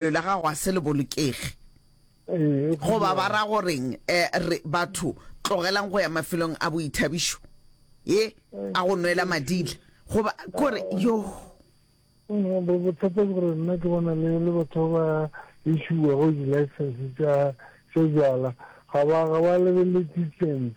Bophelo bja gago ga se le bolokege. Goba ba ra go reng? Re, batho, tlogelang go ya mafelong a boithabišo, ye, a go nwela madila. Goba, kore, yoh. Bothata ke gore nna ke bona le, le batho ba ba issuwago di-license tša, tša bjala, ga ba, ga ba lebelele distance.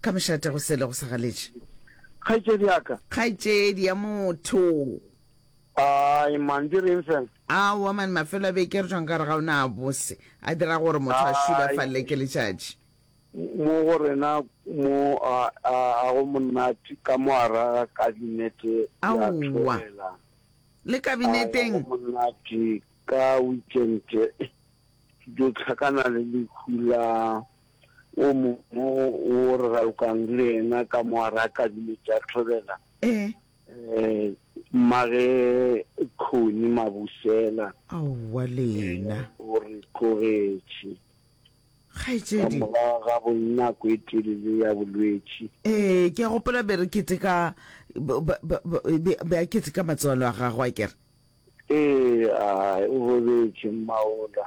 Ka mošate go sele go sa galetše. Kgaetšedi ya ka. Kgaetšedi ya motho. Ai man, di reng fela? Aowa man, mafelo a beke re tšwang ka re ga ona a bose, a dira gore motho a šulafalele ke letšatši. Mo go rena mo a, a, a go monate ka mo a ra kabinete ya thelela. Le kabineteng? Go monate ka weekend, ke dio tlhakana le lehu la wo mongwe wo re ralokang le yena ka mo a re a kadime tša thobela ee um mmage khoni mabusela aowa lena o re tlogetše ka kgaetšedi morago ga bonako e telele ya bolwetši ee ke a gopola be re keteka ba- ba- ba- ba- be be a keteka matswalo a gagwe a kere ee a o robetše mmaola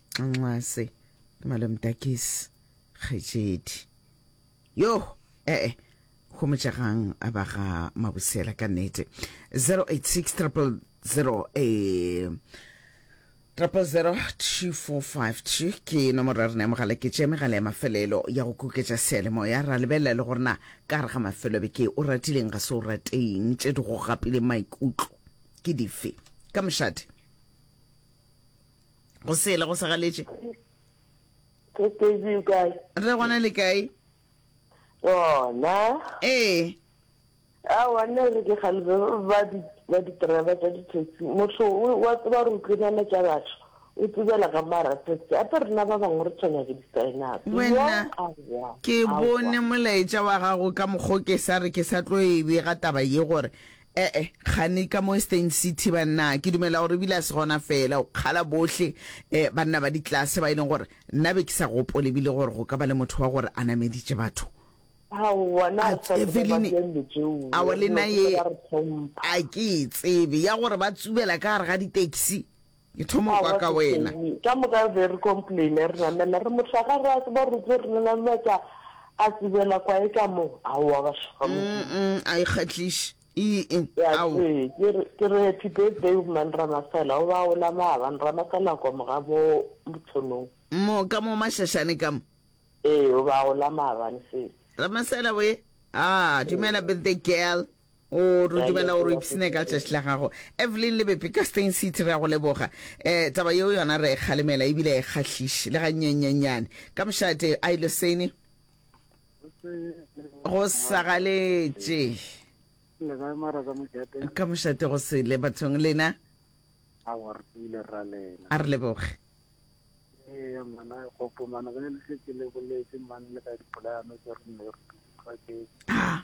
nxase ke malomtakisi kgetšedi yo ee eh, homotšagang a ba ga mabosela ka nete 086 triple zero e eh, triple zero two four five two ke nomoro ya rena ya mogala ke tše megala ya mafelelo ya go kuketša sealemoya ra lebelela le gorena ka gare ga mafelo be ke o ratileng ga se o rateng tše di go gapileng maikutlo ke dife ka mošate go sele go segaletše Ke busy o kae? re gona le kae Gona. ee A wa nna re ke galebe ba di ba di driver tsa di taxi. Motho o- wa tseba re utlwenana tša batho. O tsebela ka mara taxi. Hape rena ba bangwe re tshwenya ke di-sign-up. wena Aowa, ke aowa. bone molaetša wa gago ka mokgwa o ke sa re ke sa tlo e bega taba ye gore E-e, gane ka mo Eastern City, bannaa. Ke dumela gore ebile a se gona feela, o kgala bohle, eh, banna ba ditlase ba e leng gore nna be ke sa gopole ebile gore go ka ba le motho wa gore a nameditše batho. Aowa, na A sa tsebe ba Evelyn, diallo tšeo, awa le nna dilo se ye ke ba re hlompha. a ke e tsebe, ya gore ba tsubela ka gare ga di-taxi. Ke thoma go kwa ka wena. Ka moka o be re complaine re namela re mohla ga re a tseba gore tse re lela lwa tša a tsebela kwa e ka mo aowa ba shaka mo a e kgatliše ee ao ke re happy birthday o man ramasela o ba o la ma ban ramasela kwa mo ga mo motshonong mo ka mo mashashane ka mo ee o ba o la ma ban se ramasela we ah dumela birthday girl o re dumela gore o ipsene ka tšatši la gago evelyn lebepe ka stein city re ya go leboga um taba yeo yona re e kgalemela ebile e kgahliše le gannyenyenyane ka mošate a ile sene go sagaletše le kae mara ka mojate ka mošate go sele bathong lena a wa re pile ra lena a re leboge ee mana gopo mana ge le se ke le boletse mane le ka dipolano tse re ne re di utlwa ke a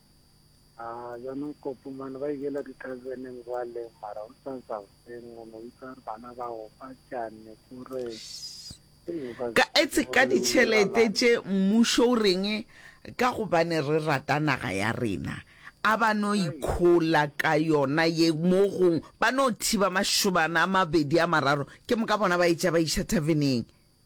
Aa, bjana Kopu mane ba ikela ditabeneng bjale, mara o sa sa beng, o no bitsa bana ba go fa tšane, o re, Hei, o ka se Ka etse tsebe ka gore le ditšhelete bolela tše mmušo o reng ka gobane re rata naga ya rena a ba no ikhola ka yona ye mo gong ba no thiba mašobana a mabedi a mararo ke moka bona ba etša ba iša thaveneng.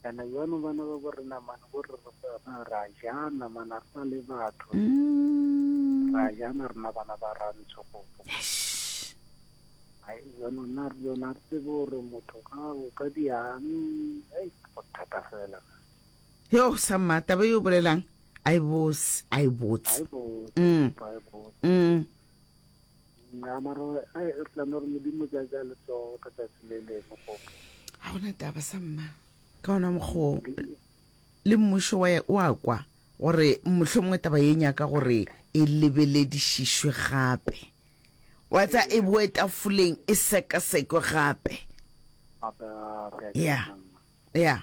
Bjale bjano bana ba bo re namane bo re ra ja namana re na le batho ra jana rena bana ba rantsho go ai bjano nna re yona re tsebe gore motho ga o ka diang ai go thata fela yo sa mmata ba yo bolelang a e bose a e botse mm. mm. nna mara ai re tla no re modimo ja ja le tso ka tsatsi le le mo go ha ona taba sa mma ka ona mokgo le mmušo wa o a kwa gore mmušo mongwe taba ye nyaka gore e lebeledišišwe gape wa tsa e boe tafoleng e sekasekwe gape ya ya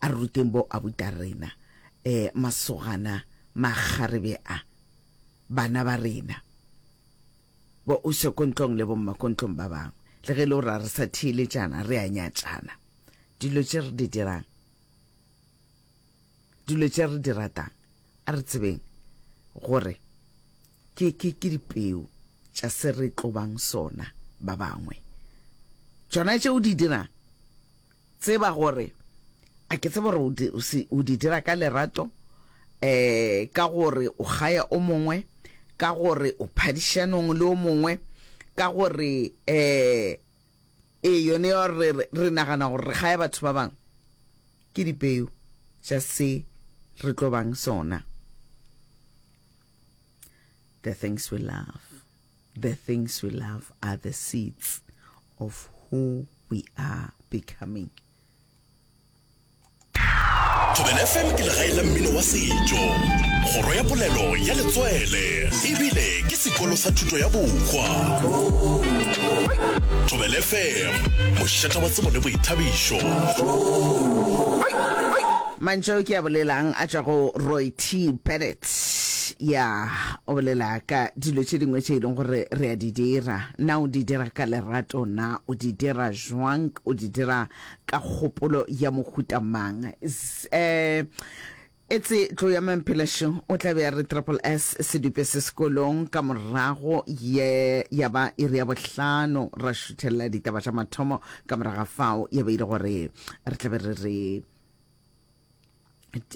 A re ruteng bo abuta rena, eh, masogana, makgarebe a, bana ba rena, bo oše kontlong le bomma kontlong ba bangwe, le ge e le gore a re sa theeletšana, re a nyatšana. Dilo tše re di dirang, dilo tše re di ratang, a re tsebeng gore ke, ke, ke dipeu tša se re tlobang sona ba bangwe. Tšona tše o di dirang Tseba gore, a ke tsebe gore o di dira ka lerato, ka gore o kgaya o mongwe, ka gore o phadišanong le o mongwe, ka gore, ee, yone ya gore re nagana gore re kgaya batho ba bangwe, ke dipeu tša se re tlo bang sona. The things we love. The things we love are the seeds of who we are becoming. Thobela FM ke legae la mmino wa setšo, kgoro ya polelo ya letswele ebile ke sekolo sa thuto ya bokwa. Thobela FM, mošata wa tsebo le boithabišo. Mantšu ao ke a bolelang a tšwa go Roy T. Bennett. Tss, ya, o bolela ka dilo tše dingwe tše e leng gore re a di dira. Na o di dira ka lerato? Na o di dira jwank? O di dira ka kgopolo ya mohuta mang? Zz, Etse tlo ya Mamphelašo, o tla be a re triple S sedupe se sekolong. Ka morago ye ya ba iri ya bohlano, ra šuthelela ditaba tša mathomo. Ka morago ga fao ya be e le gore re tla be re re.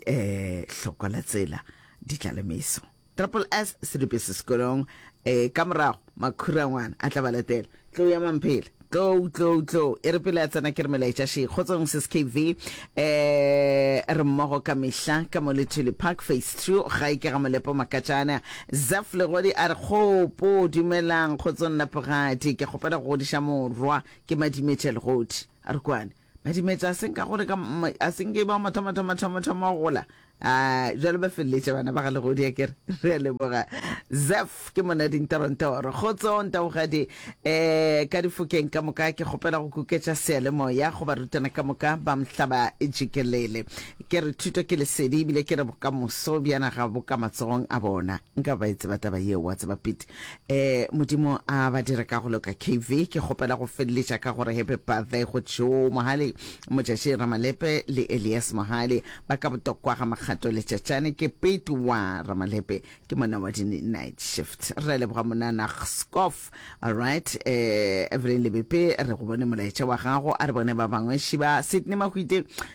eh hloko la tsela di tla le meso triple s se le bese sekolong eh ka morago makhura ngwana a tla ba latela tlo ya mamphele tlo tlo tlo e re pele a tsena ke re melaetša she kgotsong se skv eh re mmogo ka mehla ka mo le tshwele park face two ga e ke ga molepo makatšana zaf legodi a re kgopo dumelang kgotsong lapogadi ke kgopela go godiša morwa ke madimetša legodi a re kwane Badimetsa a se nka gore ka a se nke ba mathomo thoma thoma thoma go gola a jalo ba feleletša bana ba ga legodi ya kere re a leboga zef ke mona dintorontoro kgotso ntagogadi eh ka difokeng ka moka ke kgopela go kuketša sealemoya go barutwana ka moka ba mhlaba jikelele ke re thuto ke lesedi ebile ke re bokamoso bjana ga bo ka matsogong a bona Nka ba e tseba taba yeo, wa tseba Pete. Eh, Modimo a ba dire ka go loka KV. Ke kgopela go feleletša ka gore happy birthday go Joe Mohale, Motšaši Ramalepe le Elias Mohale ba ka botokwa ga Makgato le Tšatšane. Ke Pete wa Ramalepe, ke monna wa di-night shift. Re a leboga monana Gskof. Alright, eh, Evelyn Lebepe re go bone molaetša wa gago. A re bone ba bangwe. Shiba Sydney Mahwite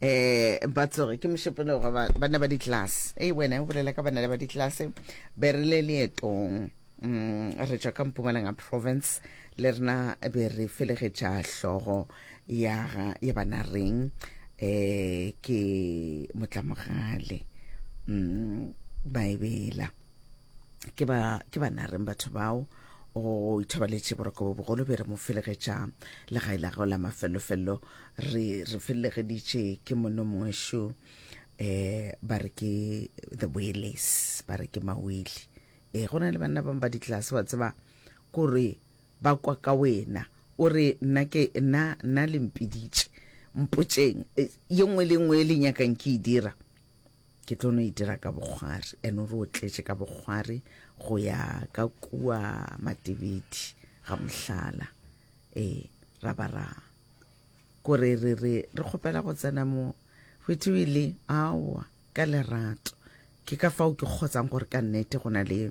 eh ba tsoge ke mošepelo ga bana ba ditlase e wena o bolela ka bana le ba ditlase be re le leetong um re tswa ka mpumalanga province le rena be re felegetša hlogo ya ya bana reng eh ke motlamogale um baebela ke ba ke ba nareng batho bao o ithobaletše boroko bo bogolo be re mo felegetša legae la gago la mafellofello re re felelegeditše ke mono mongwe šo um eh, ba re ke the wales ba re ke mawele e eh, go na le banna bangwe ba ditlase wa tseba kore ba kwa ka wena o re nna ke nna nna lempiditše mpotseng eh, ye nngwe le nngwe e le nyakang ke e dira ke tlo no itira e ka bogwari ene o re o tletše ka bogwari go ya ka kua matebedi ga mohlala ee ra ba ra kore re re re kgopela go tsena mo go ithiwile aowa ka lerato ke ka fao ke kgotsang gore ka nnete go na le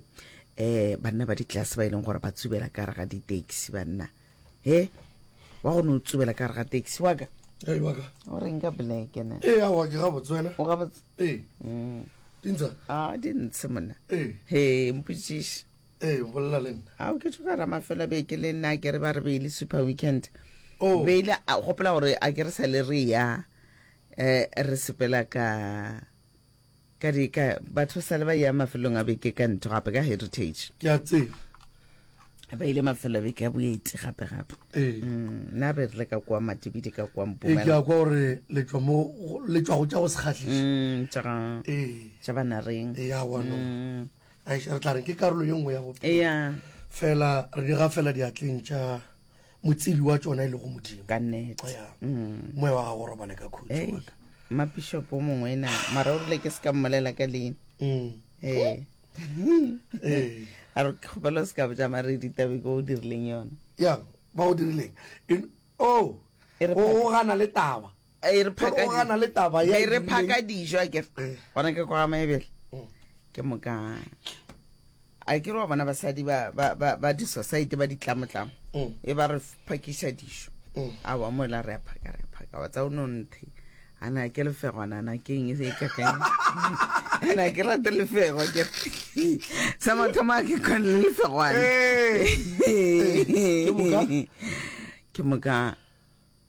um banna ba ditlase ba e leng gore ba tsubela ka re ga di-taxi banna he wa go ne o tsubela ka re ga taxi waka o reng ka blekene ee awa ke gabotse wena o gabotse ee mm. dintsha a di ntshe monna ee he mpotsiše ee bolela le nna a o ke tsho ka rama fela be ke le nna ke re ba re be le super weekend oh. be ile a gopola gore a ke re sa le re ya eh re sepela ka Ka dika, batho ba sale ba ya mafelong a beke ka ntho gape ka Heritage. Ke a tseba. Ba ile mafelo a beke a boeti gape gape. Ee. Mm, na re rile ka kwa Matibidi ka kwa Mpumela. Ee, ke a kwa gore le tšwa mo le tšwa go tša go sekgatlisa. Mm, tša ga. Ee. Tša bana reng. Ee, ya wa no. Mm. Ai, re tla re ke karolo ye nngwe ya bophelo. Ee. Fela re di ga fela diatleng tša motsebi wa tsona e lego modimo ka nete ya Mm. moya wa gago o robale ka khutso Ei, wa ka. mapishopo o mongwe na mara o rile ke se ka mmolela ka leina Mm. ee Eh. a re ke kgopela o se ka boja mare ditabe ko o dirileng yona ya ba o dirileng In- oh E re o gana le taba a e re phaka Gore o gana le taba ya e re dirileng. phaka dijo a kere Eh. gona ke kwa maebele Mm. ke moka a ke re wa bona basadi ba- ba ba- ba di-society ba ditlamotlamo Mm. e ba re phakisa dijo Mm. a wa mola re a phaka re a phaka wa tsa o no nthe a na ke lefegwana na ke eng e se e kakang a na ke rate lefego ke sa mathomo a ke kgone le lefegwana Eh. Ke moka? ke moka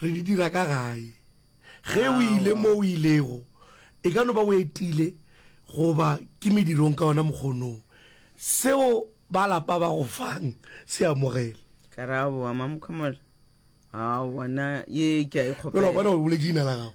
Re di dira ka gae. Ge o ile mo o ilego, e ka no ba o etile goba ke medirong ka ona mokgonong. Seo ba lapa ba go fang se amogele. Karabo, Mama Mokhomolo, a bona ye ke a e kgopela. Bjale wa bona gore o boletše leina la gago.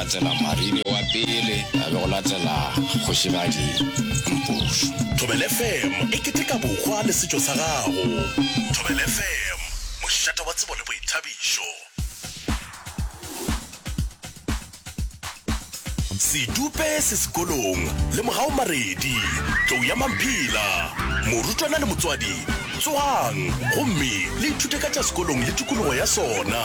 latela Marine wa pele, a be go latela Kgošigadi Mpofu. Thobela FM e keteka bokgwa le setšo sa gago. Thobela FM, mošate wa tsebo le boithabišo. Sedupe se sekolong le mogao Maredi, tlou ya Mamphila, morutwana le motswadi. Tsogang! gomme le ithute ka tša sekolong le tikologo ya sona.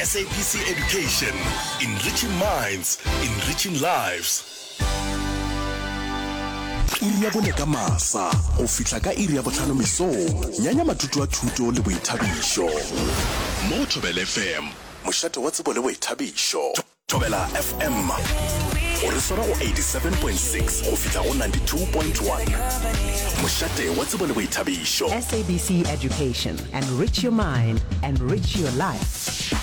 SABC Education, Enriching Minds, Enriching Lives. Iri ya bone ka masa go fihla ka iri ya bohlano mesong, nyanya matuto a thuto le boithabišo. Mo Thobela FM, mošate wa tsebo le boithabišo. thobela fm o re swara go 87.6 go fihla go 92.1 mošate wa tsebo le boithabišo sabc education enrich your mind enrich your life